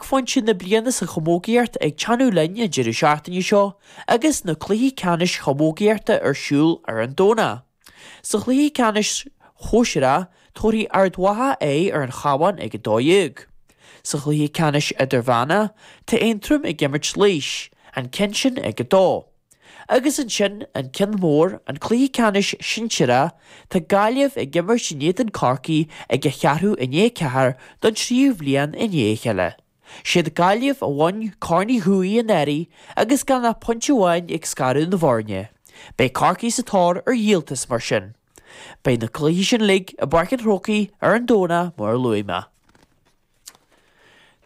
phointe na bliana sa chamógaíocht ag teannadh linn an deireadh seachtaine seo agus na cluichí ceannais chamógaíochta ar siúl ar an Domhnach. Sa chluiche ceannais sóisearach, tabharfaidh Ard Mhacha aghaidh ar an Chabhán ag a 12. Sa chluiche ceannais idirmheána, tá Aontroim ag imirt Laois, an ceann sin ag a 2. Agus ansin, an ceann mór, an cluiche ceannais sinsearach, tá Gaillimh ag imirt in éadan Chorcaí ag a cheathrú i ndiaidh a 4 don tríú bhliain i ndiaidh a chéile. 'S iad Gaillimh a bhain Corn Uí Dhubhthaigh anuraidh agus gan ach pointe amháin ag scaradh na bhfoirne. Beidh Corcaigh sa tóir ar dhíoltas, mar sin. Beidh na cluichí sin uilig i bPáirc an Chrócaigh ar an Domhnach, mar a luaigh mé.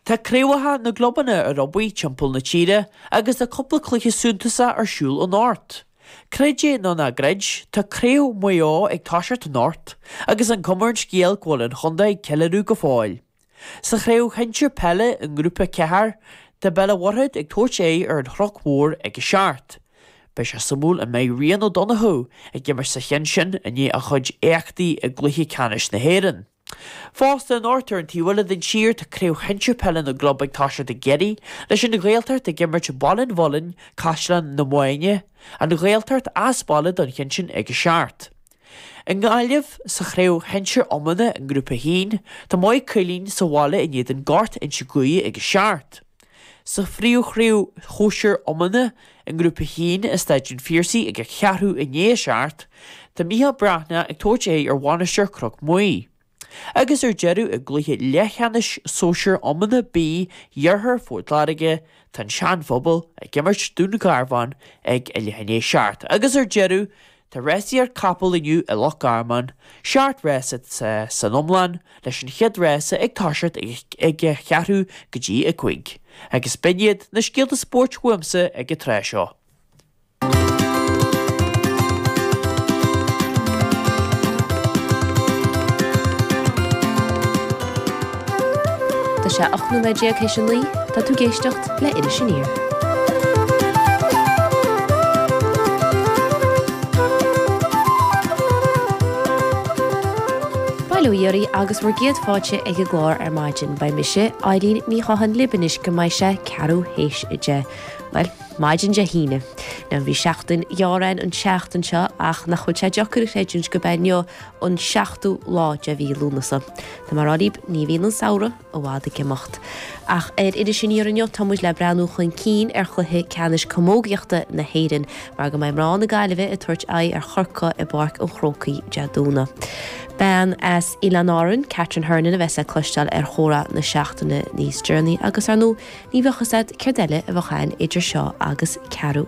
Tá craobhacha na gclubanna ar obair timpeall na tíre agus tá cúpla cluiche suntasach ar siúl anocht. Creid é nó ná gcreid, tá Craobh Mhaigh Eo ag toiseacht anocht agus an chuma ar an scéal go bhfuil an chontae ag ceiliúradh go fóill. Sa chraobh shinsir peile i nGrúpa a ceathair, tá Béal a' Mhuirthead ag tabhairt aghaidh ar an Chnoc Mhór ag a seacht. Beidh sé suimiúil an mbeidh Ryan O'Donoghue ag imirt sa cheann sin i ndiaidh a chuid éachtaí i gcluiche ceannais na hÉireann. Fosta, anocht ar an taobh eile den tír, tá craobh shinsir peile na gclub ag toiseacht i gCiarraí, leis an Ghaeltacht ag imirt Baile an Mhuilinn Caisleán na Mainge, An Ghaeltacht as baile don cheann sin ag a seacht. I nGaillimh, sa chraobh shinsir iomána i nGrúpa 1, tá Maigh Cuilinn sa bhaile in éadan Gort Inse Guaire ag a seacht. Sa phríomhchraobh shóisir iomána i nGrúpa a hAon i Staid an Phiarsaigh ag a cheathrú i ndiaidh a seacht, tá Micheál Breathnach ag tabhairt aghaidh ar Mhainistir Chnoc Muaidhe. Agus ar deireadh i gcluiche leathcheannais Sóisear Iomána B d'Iarthar Phort Láirge, tá an Sean-Phobal ag imirt Dún Garbhán ag a leath i ndiaidh a seacht. Agus ar deireadh Tá rásaíocht capall inniu i Loch Garman, seacht rása san iomlán, leis an chéad rása ag toiseacht ag a cheathrú go dtí a cúig, agus b'in iad na scéalta spóirt uaimse ag an tráth seo. Tá sé 18 nóiméad théis a naoi, tá tú ag éisteacht le Iris Aniar. Bail ó Dhia oraibh agus bhur gcéad fáilte ag an gclár ar maidin. Beidh mise, Eileen Ní Chatháin libh anois go mbeidh sé ceathrú théis a deich, bhuel, maidin Dé hAoine. Bhuel, bhí seachtain ghearr ann an tseachtain seo ach nach bhfuil sé deacair a chreidiúint gurb é inniu an seachtú lá de mhí Lúnasa. Tá mé ag rá libh, ní bhíonn an samhradh i bhfad ag imeacht. Ach ar Iris Aniar inniu, tá muid le breathnú chun cinn ar chluiche ceannais camógaíochta na hÉireann, mar go mbeidh mná na Gaillimhe ag tabhairt aghaidh ar Chorcaigh i bPáirc an Chrócaigh Dé Domhnaigh. Bean as Oileán Árainn, Catherine Hernon, a bheas le cloisteáil ar Chomhrá na Seachtaine níos deireanaí, agus ar ndóigh, ní bheadh fhios agat céard eile a bheadh ann idir seo agus ceathrú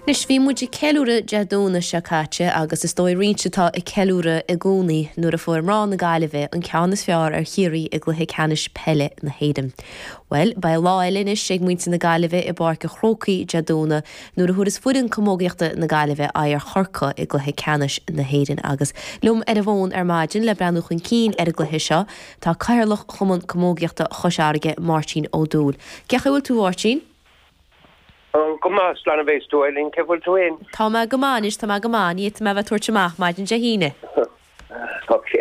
Anois, bhí muid ag ceiliúradh Dé Domhnaigh seo caite agus is dóigh roinnt atá ag ceiliúradh i gcónaí nuair a fuair mná na Gaillimhe an ceann is fearr ar Chiarraí i gCluiche Ceannais Peile na hÉireann. Bhuel, beidh lá eile anois ag muintir na Gaillimhe i bPáirc an Chrócaigh Dé Domhnaigh nuair a thabharfas foireann camógaíochta na Gaillimhe aghaidh ar Chorcaigh i gCluiche Ceannais na hÉireann agus liom ar an bhfón ar maidin le breathnú chun cinn ar an gcluiche seo tá Cathaoirleach Chumann Camógaíochta Chois Fharraige, Máirtín Ó Dúill. Cén chaoi a bhfuil tú, Mháirtín? Go maith, slán a bheas tú, Eileen, cén chaoi a bhfuil tú fhéin? Tá mé go maith anois, tá mé go maith, ní fhéadfaidh mé a bheith ag tabhairt amach maidin Dé hAoine. Ok.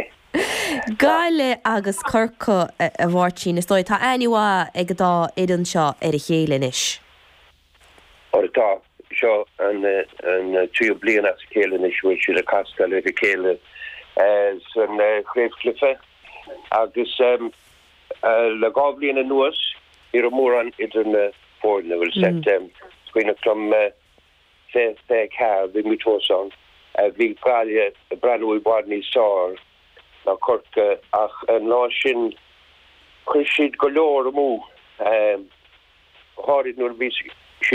Gaillimh agus Corcaigh, a Mháirtín, is dóigh, tá aithne mhaith ag an dá fhoireann seo ar a chéile anois. Ó tá, seo an tríú bliain as a chéile anois a bhfuil siad ag castáil ar a chéile san chraobhchluiche agus. Le dhá bhliain anuas ní raibh mórán idir na foirne, bhuel 's é mo chuimhneachtáil faoi 24, bhí muid thuas ann. Bhí Gaillimh ag breathnú i bhfad níos fearr ná Corcaigh ach an lá sin chuir siad go leor amú, go háirid nuair a bhí siad